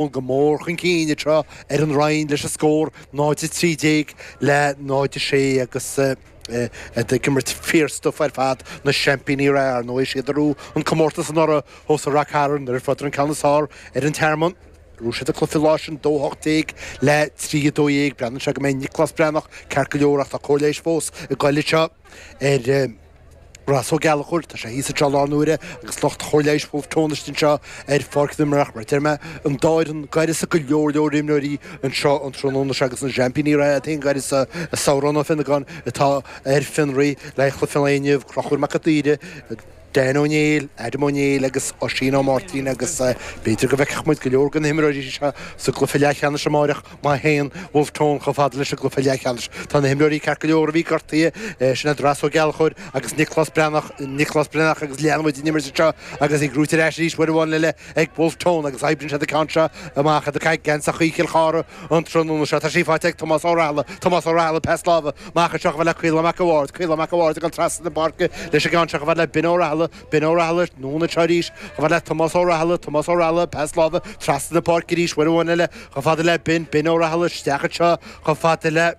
Ón go mór chun cinn anseo ar an Rinn leis an scór 0 13 le 0 6 agus iad ag imirt fíor stuif ar fad, na seaimpíní ar ndóigh. Is iad a ghnóthaigh an comórtas anuraidh thuas i Ráth Chairn nuair a fuaireadar an ceann is fearr ar an Tearmann. Ghnóthaigh siad an cluiche an lá sin 2 18 le 3 12. Breathnaíonn sé go mbeidh Nioclás Breathnach ceart go leor ach tá cóir leighis fós ag goil anseo ar. Ross Ó Gallchóir, Tá sé thíos anseo i láthair na huaire agus lucht chóir leighis Bhulf Tón istigh anseo ar pháirc na himeartha mar a deir mé, an dá fhoireann d'uireasa go leor leor imreoirí anseo an tráthnóna seo agus na seaimpíní reatha iad féin d'uireasa Sarán Ó Fionnagáin atá ar fionraí le haghaidh chluiche an lae inniu, Conchúr Mac an tSaoire, Dan Ó Néill, Adam Ó Néill agus Oisín Ó Máirtín agus b'fhéidir go bhfeicfeadh muid go leor de na himreoirí seo sa gcluiche leathcheannais amáireach. Má théann Bhulf Tón chomh fada leis an gcluiche leathcheannais, tá na himreoirí ceart go leor a bhí gortaithe, sin iad Ross Ó Gallchóir agus Nioclás Breathnach, Nioclás Breathnach agus leanfaidh muid den imirt anseo agus í gnóthaithe ar ais arís uair amháin eile ag Bhulf Tón agus oibríonn siad an ceann seo amach iad i gceannas anseo i gCill Chartha an tráthnóna seo. Tá sí faighte ag Tomás Ó Rathaille, Tomás Ó Rathaille, pas láimhe amach anseo chomh fada le Caolán Mac a' Bhaird, Caolán Mac a' Bhaird ag dul trasna na páirce leis an gceann seo chomh fada le Ben Ó Rathaille, Ben Ó Rathaille, anonn anseo arís, chomh fada le Tomás Ó Rathaille, Tomás Ó Rathaille, pas láimhe trasna na páirce arís, uair amháin eile, chomh fada le Ben, Ben Ó Rathaille, isteach anseo, chomh fada le,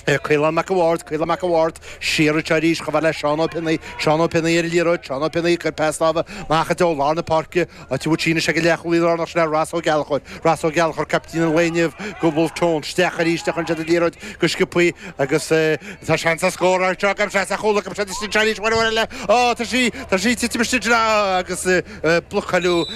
Caolán Mac a' Bhaird, Caolán Mac a' Bhaird, siar anseo arís, chomh fada le Seán Ó Pionnaí, Seán Ó Pionnaí ar an liathróid, Seán Ó Pionnaí, cuir pas láimhe amach i dtreo lár na páirce, Áit a bhfuil sí anois ag an leathchúlaí lárnach sin é Ross Ó Gallchóir, Ross Ó Gallchóir, caiptín an lae inniu do Bhulf Tón isteach arís a chuireann siad an liathróid go sciobthaí agus tá seans ar scór anseo ag Caibidil Seasa a chúl ag Caibidil Seasa istigh anseo arís uair amháin eile. Ó tá sí, tá sí ag titim istigh anseo agus blocáladh,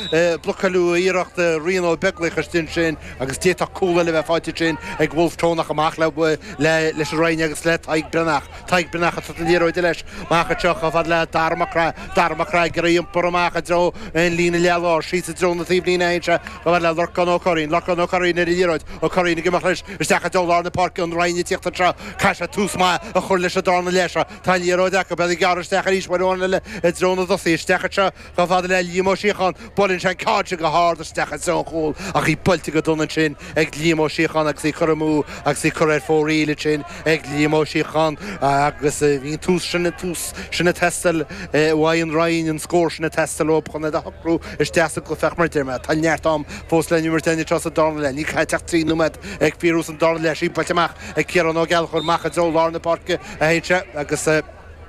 blocáladh iarracht Ryan Ó Beaglaoich istigh ansin agus d'fhéadfadh cúl eile a bheith faighte ansin ag Bhulf Tón ach amach le, leis an Rinn agus le Tadhg Breathnach. Tadhg Breathnach ag tabhairt na liathróide leis amach anseo chomh fada le Dara Mac Craith Dara Mac Craith Ag iarraidh iompar amach i dtreo an líne leath láir Síos i dtreo na taobhlíne Théann sé chomh fada le Lorcán Ó Curraoin Lorcán Ó Curraoin ar an liathróid Ó Curraoin ag imeacht leis isteach i dtreo lár na páirce An Rinn ag tíocht anseo caithfidh siad tús maith a chur leis an darna leath seo Tá an liathróid acu Iad ag gearradh isteach arís uair amháin eile i dtreo na dtosaithe Isteach anseo Chomh fada le Liam Ó Síocháin, buaileann sé an ceann seo go hard isteach i dtreo an chúil ach í buailte go dona ansin ag Liam Ó Síocháin agus í curtha amú agus í curtha ar fóraoil ansin ag Liam Ó Síocháin agus bhí an tús sin, an tús sin ag teastáil uaidh an Rinn, an scór sin ag teastáil uathu chun iad a shocrú isteach sa gcluiche ach mar a deir mé, tá neart am fós le n-imirt anseo sa darna leath, níl caite ach trí nóiméad go fóill sa darna leath seo, í buailte amach ag Ciarán Ó Gallchóir amach i dtreo lár na páirce a théann sé agus.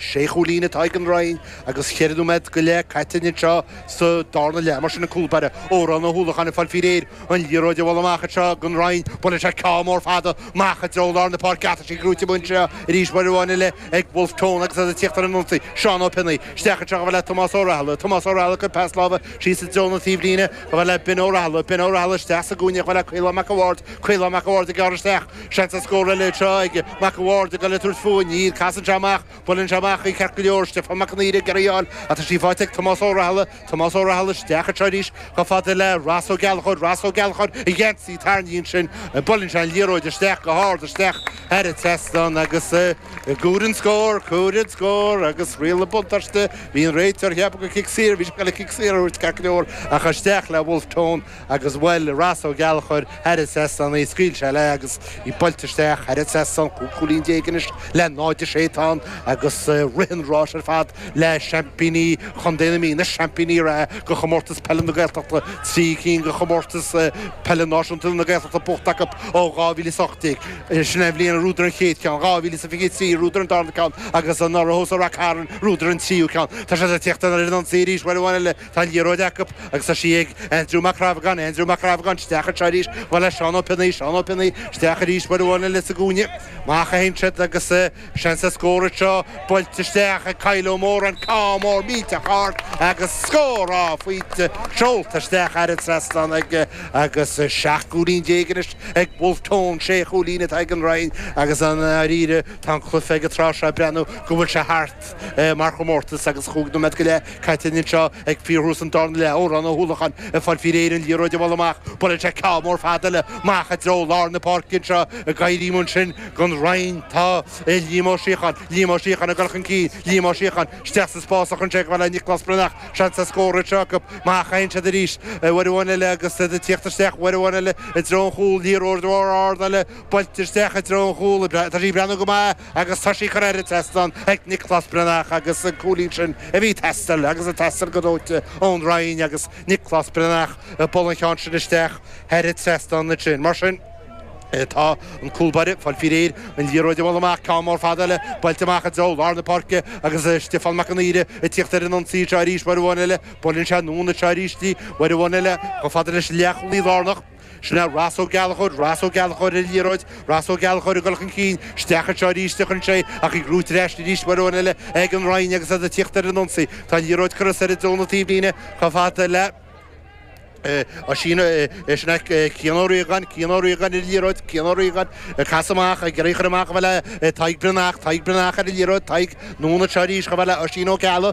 Sé chúilín atá ag an Rinn agus ceithre nóiméad go leith caite anseo sa darna leath. Mar sin, an cúlbáire, Odhrán Ó hUallacháin ag fáil fí réir an liathróid a bhualadh amach anseo don Rinn. Buaileann sé ceann mór fada amach i dtreo lár na páirce ach tá sí gnóite amuigh anseo arís uair amháin eile ag Bhulf Tón agus iad ag tíocht ar an ionsaí. Seán Ó Pionnaí, isteach anseo, chomh fada le Tomás Ó Rathile. Tomás Ó Rathile, cuir pas láimhe síos i dtreo na taobhlíne, chomh fada le Ben Ó Rathile. Ben Ó Rathile, isteach sa gcúinne, chomh fada le Caolán Mac a' Bhaird. Caolán Mac a' Bhaird ag gearradh isteach. Seans ar scór eile anseo ag Mac a' Bhaird a ghoil ag tabhairt faoi. Níl. Casann sé amach. Buaileann sé amach í ceart go leor. Stiofán Mac an Aoire ag iarraidh í a fháil ach tá sí faighte ag Tomás Ó Rathile. Tomás Ó Rathile isteach anseo arís chomh fada le Ross Ó Gallchóir. Ross Ó Gallchóir i gceannas í. Tarraingíonn sin. Buaileann sé an liathróid isteach go hard isteach thar an trasnán agus cúireann scór. Cúireann scór agus riail an bhuntáiste. Bhí an réiteoir ag ceapadh gur cic saor bhí sé le cic saor a thabhairt ceart go leor ach isteach le Wolfe Tone. agus bhuail Rossa Ó Gallchóir thar an trasnán é, scaoil sé léi agus í buailte isteach thar an trasnán cúig chúilín déag anois le 0-6 atá ann agus rith an ráis ar fad le seaimpíní chontae na Mí, na seaimpíní reatha go Chomórtas Peile na Gaeltachta, trí cinn go Chomórtas Peile Náisiúnta na Gaeltachta buachta acu ó 2018. Sin é an bhliain ar bhuadar an chéad cheann, 2023 ar bhuadar an darna ceann agus anuraidh thuas i Ráth Chairn ar bhuadar an tríú ceann. Tá siad ag tíocht ar an ionsaí arís uair amháin eile. Tá an liathróid acu agus tá sí ag Aindriú Mac Dhreamhagáin, Aindriú Mac Dhreamhagáin, isteach anseo arís, chomh fada le Seán Ó Pionnaí, Seán Ó Pionnaí, isteach arís uair amháin eile sa gcúinne, amach a théann siad agus seans ar scór anseo, buailte isteach ag Kyle Ó Móráin, ceann mór millteach ard agus scór! Á, faighte, seolta isteach thar an trasnán aige, agus seacht gcúilín déag anois ag Bhulf Tón, sé chúilín atá ag an Rinn agus, i ndáiríre, tá an cluiche ag an tráth seo ag breathnú go bhfuil sé thart. mar chomórtas agus cúig nóiméad go leith caite againn anseo ag fíorthús an darna leath. Odhrán Ó hUallacháin ag fáil fí réir an liathróid a bhualadh amach. Buaileann sé ceann mór fada eile amach i dtreo lár na páirce anseo ag éirí ansin don Rinn. Tá Liam Ó Síocháin. Liam Ó Síocháin ag dul chun cinn. Liam Ó Síocháin isteach sa spás a théann sé chomh fada le Nioclás Breathnach. Seans ar scór anseo acu amach a théann siad arís. Uair amháin eile agus iad ag tíocht isteach. Uair amháin eile i dtreo an chúl. Liathróid mhór ard eile buailte isteach i dtreo an chúl. Tá sí ag breathnú go maith. agus tá sí curtha thar an trasnán ag Nioclás Breathnach agus an cúilín sin a bhí ag teastáil agus ag teastáil go dóite ón Rinn agus Nioclás Breathnach ag bualadh an cheann sin isteach thar an trasnán ansin. Mar sin, tá an cúlbáire ag fáil fí réir an liathróid a bhualadh amach ceann mór fada eile, buailte amach i dtreo lár na páirce agus Stiofán Mac an Aoire ag tíocht ar an ionsaí anseo arís, uair amháin eile, buaileann sé anonn anseo arís í, uair amháin eile, chomh fada leis an leathchúlaí lárnach. Sna Ross Ó Gallchóir, Ross Ó Gallchóir ar an liathróid, Ross Ó Gallchóir ag dul chun cinn, isteach anseo arís a chuireann sé ach í brúite ar ais arís uair amháin eile ag an Rinn agus iad ag tíocht ar an ionsaí. Tá an liathróid curtha soir i dtreo na taobhlíne chomh fada le Oisín, sin é Cian Ó Riagáin, Cian Ó Riagáin ar an liathróid, Cian Ó Riagáin ag casadh amach, ag iarraidh í a chur amach chomh fada le Tadhg Breathnach, Tadhg Breathnach ar an liathróid, Tadhg, anonn anseo arís chomh fada le Oisín Ó Ceallaigh.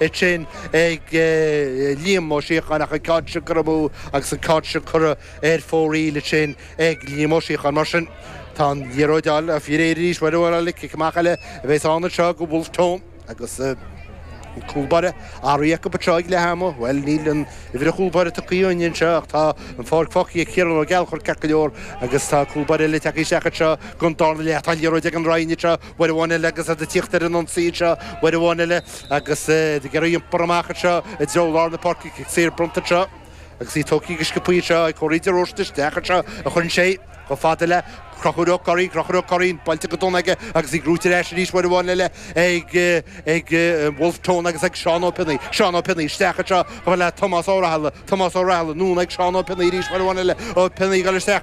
é sin ag Liam Ó Síocháin ach an ceann sin curtha amú agus an ceann sin curtha ar fóraoil ansin ag Liam Ó Síocháin. Mar sin tá an liathróid á fir Éireann arís mar sin cic amach eile a bheas ann anseo go Wolfe Tone agus an cúlbáire athraithe acu anseo ag leath ama. Bhuel níl an uimhir an chúlbáire tugtha againn anseo ach tá an pháirc fágtha ag Ciarán Ó Gallchóir ceart go leor agus tá cúlbáire eile tagtha isteach anseo don darna leath. Tá an liathróid ag an Rinn anseo, uair amháin eile agus iad ag tíocht ar an ionsaí anseo uair amháin eile agus iad ag iarraidh í a iompar amach anseo i dtreo lár na páirce, cic saor bronnta anseo agus é tógtha go sciobtha anseo ag Cóilín de Róiste, isteach anseo a chuireann sé chomh fada le Conchúr Ó Cuirrín, Conchúr Ó Cuirrín, buailte go dona aige agus í brúite ar ais arís uair amháin eile ag Wolfe Tone agus ag Seán Ó Pionnaí, Seán Ó Pionnaí, isteach anseo chomh fada le Tomás Ó Raithile, Tomás Ó Raithile, anonn ag Seán Ó Pionnaí arís uair amháin eile, Ó Pionnaí ag dul isteach.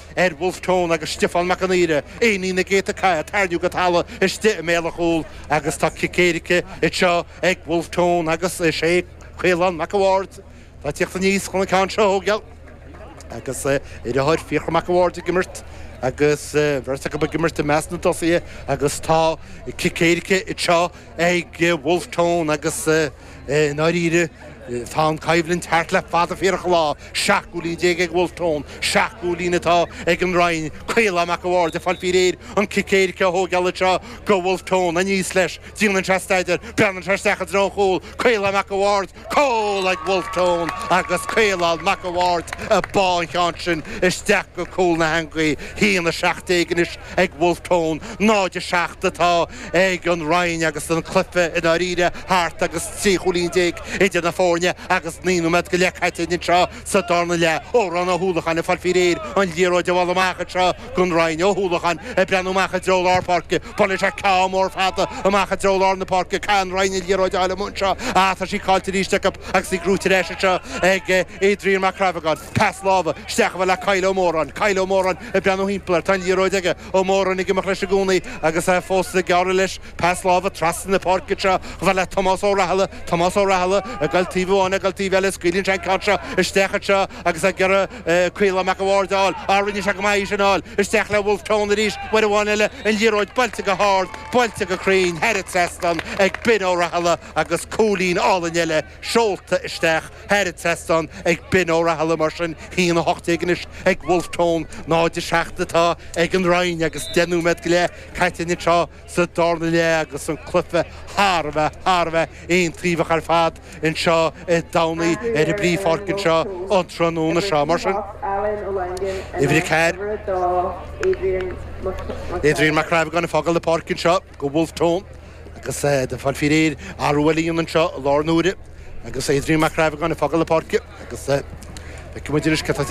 ar Wolfe Tone agus Stiofán Mac an Aoire, iománaí na gcéadta cath, tarraingníodh go talamh istigh i mbéal an chúil agus tá cic éirice anseo ag Wolfe Tone agus is é Caolán Mac a' Bháird atá ag teacht aníos chun an ceann seo a thógáil agus a dheartháir Fiachra Mac a' Bháird ag imirt agus an bheirt acu ag imirt i measc na dtosaithe agus tá cic éirice anseo. ag Wolfe Tone agus i ndáiríre tá an choimhlint thart le fada fíorach an lá. 17 gcúilín ag Wolfe Tone, seacht gcúilín atá ag an Rinn. Caolán Mac a' Bhaird ag fáil faoi réir an cic éirice a thógáil anseo do Wolfe Tone. Aníos leis, déanann sé staidear, breathnaíonn sé isteach i dtreo an chúil. Caolán Mac a' Bhaird. Cúl ag Wolfe Tone agus Caolán Mac a' Bhaird a bháigh an ceann sin isteach go cúl na heangaí. Haon a seacht déag anois ag Wolfe Tone, 0, 7 atá ag an Rinn agus an cluiche i ndáiríre thart agus trí chúilín déag idir na foirne agus naoi nóiméad go leith caite anseo sa darna leath. Odhrán Ó hUallacháin ag fáil fí réir an liathróid a bhualadh amach anseo. don Rinn Ó hUallacháin ag breathnú amach i dtreo lár páirce, buaileann sé ceann mór fada amach i dtreo lár na páirce, caithfidh an Rinn an liathróid a fháil amuigh anseo, ah tá sí cáillte arís acu agus í brúite ar ais anseo ag Adrian Mac Reabhagáin, pas láimhe isteach chomh fada le Kyle Ó Móráin, Kyle Ó Móráin ag breathnú thimpeall air, tá an liathróid aige, Ó Móráin ag imeacht leis i gcónaí agus é fós ag gearradh leis, pas láimhe trasna na páirce anseo chomh fada le Tomás Ó Raithile, Tomás Ó Raithile ag goil taobh amháin ag goil taobh eile, scaoileann sé an ceann seo isteach anseo agus ag iarraidh. Caolán Mac an Bhaird, All, All Rinne sé go maith ansin, All, Isteach le Wolfe Tone arís, uair amháin eile, an liathróid buailte go hard, buailte go cruinn, thar an trasnán ag Binn Ó Rathaille agus cúilín álainn eile seolta isteach, thar an trasnán ag Binn Ó Rathaille mar sin haon a hocht déag anois ag Wolfe Tone, 0-7 atá ag an Rinn agus deich nóiméad go leith caite anois. sa darna leath agus an cluiche thar a bheith, thar a bheith aontaobhach ar fad anseo i dTamhnaigh ar an bpríomhpháirc anseo an tráthnóna seo. Mar sin, uimhir a ceathair, Adrian Mac Crabhagáin ag fágáil na páirce anseo do Wolfe Tone agus de Pháil Fíréir arú a líonann anseo i láthair na huaire agus Adrian Mac Crabhagáin ag fágáil na páirce agus feicfidh muid anois cad